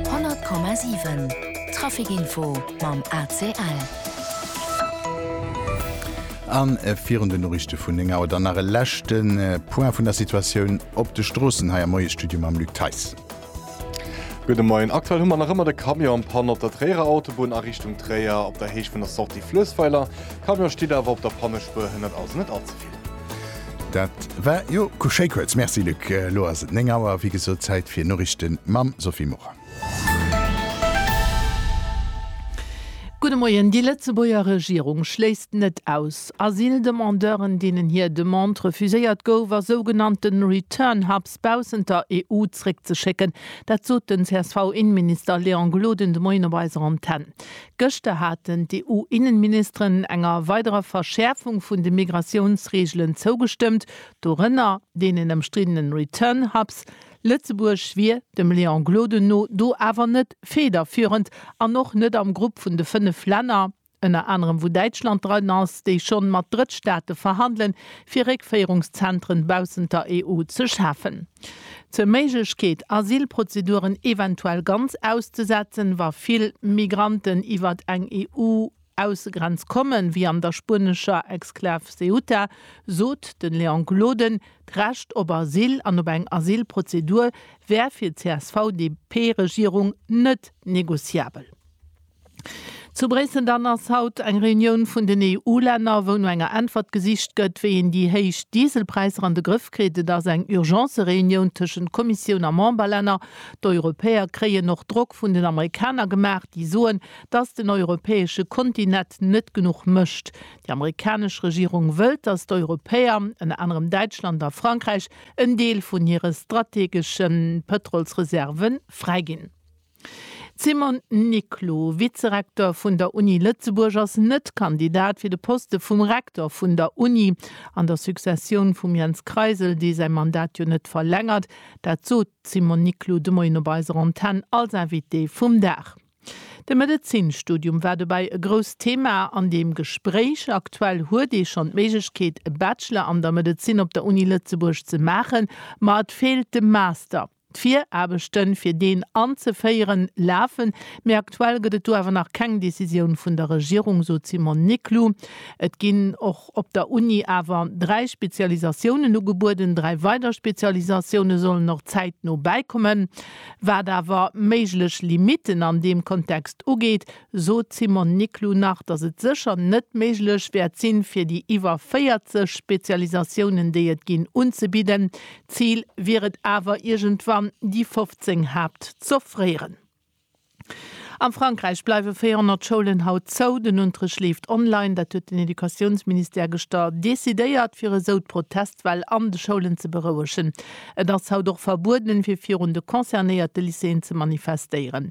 100,7 Traficinfo mam ACL. A virun den Noriichte vun 9 Auer dann nach e leschte Point vun der Situatioun op de Stroossen hei am Moiesstudio mam Luc Theis. Gudde Moien. Aktuell hu mer nach ëmmer de Camion am Panne op der Tréierer Autobunn a Richtung Tréier op der Héicht vun der Sortie Fluessweiler. Camion steet awer op der Pannespuer hënnert, also net allze. Dat war jo ku schéi kuerz. Merci Luc. Elo ass et 9 Auer, wéi gesot Zäit fir Noriichten mam Sophie Morang. Gudde Moien. Déi Lëtzebuerger Regierung schléisst net aus, Asyldemandeuren, deenen hir Demande refuséiert gouf, a sougenannte Return Hubs baussent der EU zréckzeschécken. Dat sot den CSV-Innenminister Léon Gloden de Moien op eiser Antenn. Gëschter haten d'EU-Innenministeren enger weiderer Verschäerfung vun de Migratiounsreegelen zougestëmmt, dorënner deenen ëmstriddenen Return Hubs. Lëtzebuerg wier, dem Léon Gloden no, do awer net federführend an och net am Grupp vun de fënnef Länner, ënner anerem wou Däitschland dran ass, déi schonn mat Drëttstaate verhandelen, fir Réckféierungszentren baussent der EU ze schafen. Zur Méiglechkeet, Asylprozeduren eventuell ganz auszesetzen, wa vill Migranten iwwert eng EU-Aussegrenz kommen, wéi an der spuenescher Exklav Ceuta, sot de Léon Gloden, D'Recht op Asyl an op eng Asylprozedur wär fir d'CSV-DP-Regierung net negociabel. Zu Bréissel dann ass haut eng Reunioun vun den EU-Länner, wou no enger Äntwert gesicht gëtt, wéi een déi héich Dieselpräisser an de Grëff kritt. Et ass eng Urgence-Reunioun tëschent Kommissioun a Memberlänner. D'Europäer kréien och Drock vun den Amerikaner gemaach, déi soen, datt den europäesche Kontinet net genuch mécht. Déi amerikanesch Regierung wëllt, datt d'Europäer, ënner anerem Däitschland a Frankräich, en Deel vun hire strategesche Pëtrolsreserve fräiginn. Simon Niclou, Vizerektor vun der Uni Lëtzebuerg, ass net Kandidat fir de Poste vum Rektor vun der Uni. An der Successioun vum Jens Kreisel, dee säi Mandat jo net verlängert, dat sot d'Simone Niclou de Moien op eiser Antenn als Invitée vum Dag. De Medezinstudium war dobäi e grousst Thema an deem Gespréich. Aktuell huet ee schonn d'Méiglechkeet e Bachelor an der Medezin op der Uni Lëtzebuerg ze maachen, ma et feelt de Master. D'Viraarbechte fir deen anzeféieren, lafen, mee aktuell gëtt et do awer nach keng Decisioun vun der Regierung, sot d'Simone Niclou. Et ginn och op der Uni awer dräi Spezialisatiounen ugebueden. Dräi weider Spezialisatioune sollen och zäitno bäikommen. Wat awer méiglech Limitten an deem Kontext ugeet, sot d'Simone Niclou nach, datt et sécher net méiglech wäert sinn, fir déi iwwer 40 Spezialisatiounen, déi et ginn, unzebidden. D'Zil wier et awer, iergendwann déi 15 Haupt z'offréieren. A Frankräich bleiwe 400 Schoulen haut zou. Den Unterrecht leeft online. Dat huet den Educatiounsministère geschter decidéiert, fir esou d'Protestwell an de Schoulen ze berouegen. Et ass haut och verbueden, fir virun de concernéierte Lycéeën ze manifestéieren.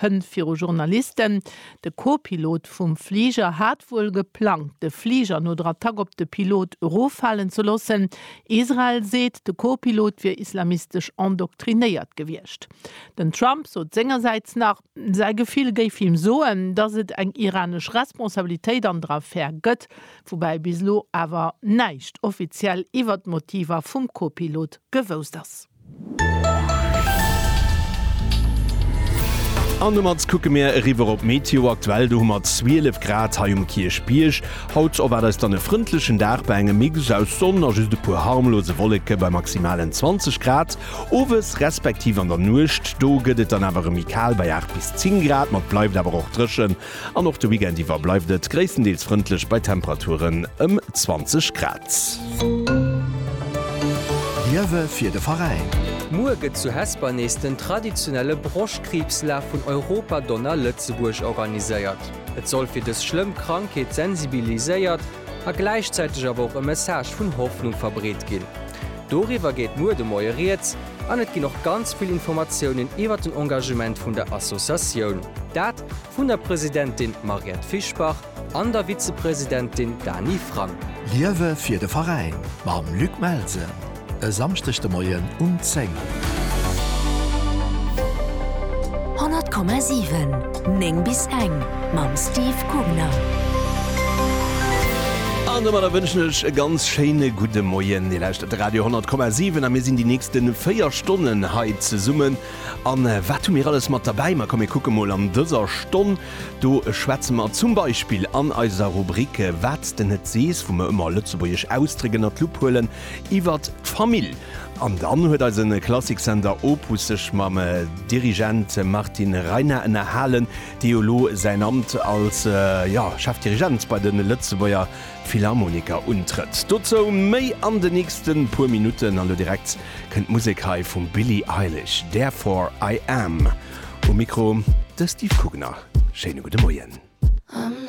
Hënn viru Journalisten, De Co-Pilot vum Fliger hat wuel geplangt, de Fliger no der Attack op de Pilot eroffalen ze loossen. Israel seet, de Co-Pilot wier islamistesch endoktrinéiert gewiescht. Den Trump sot sengersäits nach, säi Gefill géif him soen, datt et eng iranesch Responsabilitéit an der Affär gëtt, woubäi bis elo awer näischt offiziell iwwert d'Motiver vum Co-Pilot gewousst ass. An domat kucke mir eriwwer op d'Meteo aktuell. Do hu mer 12 Grad hei um Kierchbierg. Haut erwaart eis dann e frëndlechen Dag bei engem Mix aus Sonn a just e puer harmlose Wolleke bei maximalen 20 Grad. Owes respektiv an der Nuecht do gëtt et dann awer erëm méi kal bei 8 bis 10 Grad, ma et bleift awer och dréchen An och de Weekend iwwer bleift et gréisstendeels frëndlech bei Temperaturen ëm 20 Grad. Liewe fir de Veräin! Muer gëtt zu Hesper nees den traditionelle Broschkriibslaf vun Europa Donna Lëtzebuerg organiséiert. Et soll fir dës schlëmm Krankheet sensibiliséiert a gläichzäiteg awer och e Message vun Hoffnung verbreet ginn. Doriwwer geet muer de Moie Rieds an et ginn och ganz vill Informatiounen iwwer den Engagement vun der Associatioun. Vun der Presidentin Mariette Fischbach an der Vizepresidentin Dany Frank. Liewe fir de Veräin mam Luc Melsen e Samschdeg de Moien um 10. 100,7 9 bis eng mam Steve Kugner. An domadder wënschen ech e ganz schéine gudde Moien. Dir lauschtert de Radio 100,7 a mir sinn déi nächste 4 Stonnen hei zesummen A wat hu mir alles mat derbäi? Ma komm mir kucke mol an dëser Stonn. Do schwätze mer zum Beispill an eiser Rubrik Wat s de net sees, wou mer ëmmer lëtzebuergesch Ausdréck ënnert d'Lupp huelen, iwwert d'Famill. An dann huet eise Klassiksender Opus sech mam Dirigent Martin Reiner ënnerhalen, dee jo elo säin Amt als, ja, Chef-Dirigent bei de Lëtzebuerger Philharmoniker untrëtt. Dozou méi an de nächste puer Minutten. An lo direkt kënnt Musek hei vum Billie Eilish, Therefore I Am. Um Mikro de Steve Kugner. Schéine gudde Moien.